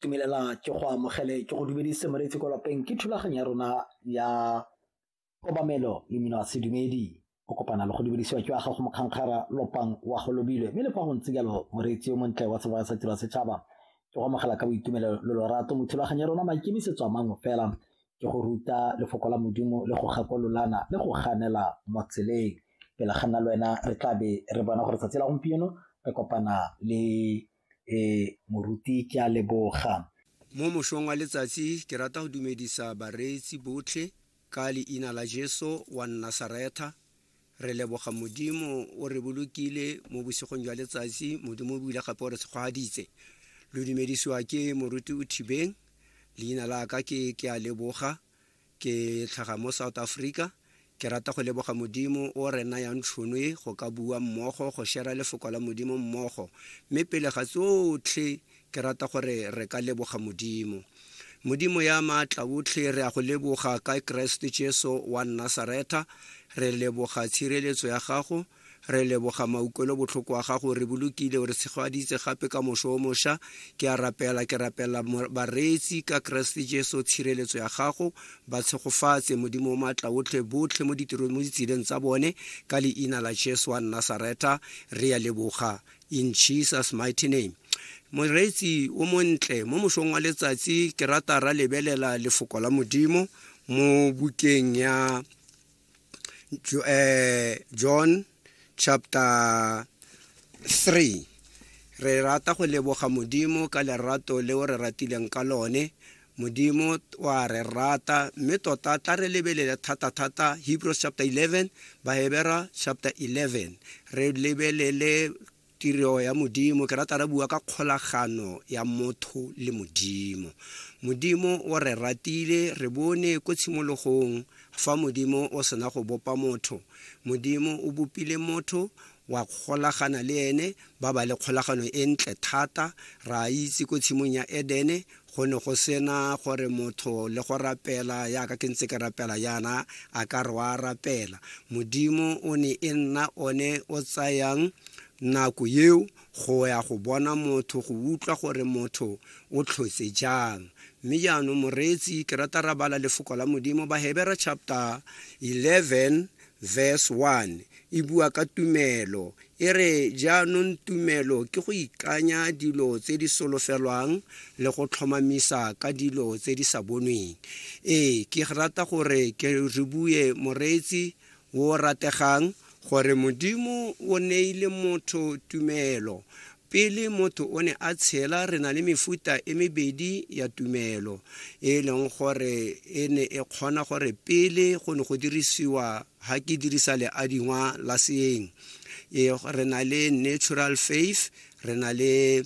Tumelela ke go amogele ke go dumedise moreetsi ko lapeng ke thulaganyo ya rona ya kobamelo le mino a sedumedi o kopana le go dumedisiwa ke wa gago mokgankgara lopang wa go lobile mme le fa go ntse jalo moreetsi yo montle wa seboa sa tiro ya setšhaba ke go amogela ka boitumelo lo lorato mo thulaganyo ya rona maikemisetso a mangwe fela ke go ruta lefoko la modimo le go gakololana le go ganela mo tseleng pele ga nna le wena re tla be re bona gore tsatsi la gompieno re kopana le um moruti ke a leboga mo mosong wa letsatsi ke rata go dumedisa bareetsi botlhe ka leina la jesu wa nnasaretha re leboga modimo o re bolokile mo bosigong jwa letsatsi modimo o buile gape o re tshegwaditse lo dumedisiwa ke moruti o thibeng leina la ka ke ke a leboga ke tlhaga mo south africa ke rata go leboga modimo o re nayang tšhono e go ka bua mmogo go shera lefoko la modimo mmogo mme pele ga tsotlhe Ke rata gore re ka leboga Modimo. Modimo ya maatla otlhe, re a go leboga ka Keresete Jesu wa Nasaretha. Re leboga tshireletso ya gago, re leboga maukelo botlhoko wa gago, re bolokile, o re tshegaditse gape ka mošo o mošwa. Ke a rapela, ke rapela mo- bareetsi ka Keresete Jesu, tshireletso ya gago, ba tshegofatse Modimo o maatla otlhe, botlhe mo ditirong, mo ditseleng tsa bone, ka leina la Jesu wa Nasaretha, re a leboga. in jesus mighty name moreetsi o montle mo mosong wa letsatsi ke rata ra lebelela lefoko la modimo mo bukeng ya Jo- eh, john chapter 3 re rata go leboga modimo ka lerato leo re ratileng ka lone Modimo wa re rata mme tota tla re lebelele thata-thata Hebrews chapter 11, Bahebera chapter 11. Re lebelele tiro ya Modimo. Ke rata re bua ka kgolagano ya motho le Modimo. Modimo o re ratile, re bone ko tshimologong fa Modimo o sena go bopa motho. Modimo o bopile motho wa kgolagana le ene ba ba le kgolagano e ntle thata ra itse ko tshimong ya edene go ne go sena gore motho le go rapela yaka ke ntse ke rapela yana a ka re wa rapela modimo o ne e nna one o tsayang nako eo go ya go bona motho go utlwa gore motho o tlhotse jang mme jaanong moreetsi ke rata rabala lefoko la modimo bahebera chapter 11 Verse 1 e bua ka tumelo, e re jaanong tumelo ke go ikanya dilo tse di solofelwang le go tlhomamisa ka dilo tse di sa bonweng. Ee, ke rata gore ke re bue moreetsi o rategang gore Modimo o neile motho tumelo, Pele motho o ne a tshela, re na le mefuta e mebedi ya tumelo e e leng gore e ne e kgona gore pele go ne go dirisiwa ha ke dirisa leadingwa la seeng e, re na le natural faith re na le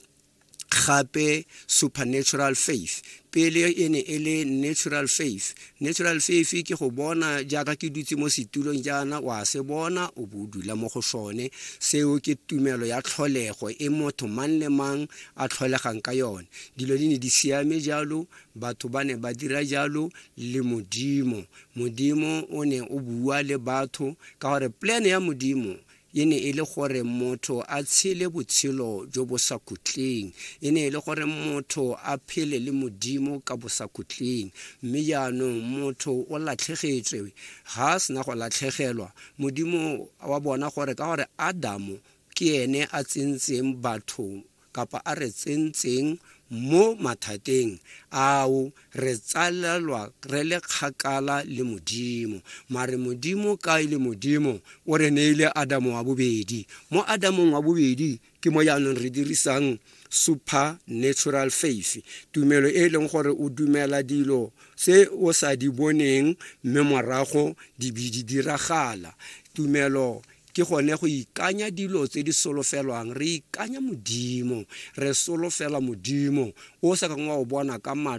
gape supernatural faith pele e ne e le natural faith natural faith ke go bona jaaka ke dutse mo setulong jaana wa se bona o bo dula mo go sone seo ke tumelo ya tlholego e motho mang le mang a tlholegang ka yone dilo di ne di siame jalo batho ba ne ba dira jalo le modimo modimo o ne o bua le batho ka gore plan ya modimo e ne e le gore motho a tshele botshelo jo bo sa kutleng e ne e le gore motho a phele le modimo ka bo sa kutleng mme jaanong motho o latlhegetswe ga a sena go latlhegelwa modimo wa bona gore ka gore adamo ke ene a tsentseng batho kapa a re tsentseng mo mathateng ao re tsalelwa re le kgakala le modimo mare modimo ka e le modimo o re neile adamo wa bobedi mo adamong wa bobedi ke mo jaanong re dirisang supernatural faith tumelo e e leng gore o dumela dilo se o sa di boneng mme morago di be di diragala tumelo ke gone go ikanya dilo tse di solofelwang re ikanya modimo re solofela modimo o sa kang wa o bona ka matlho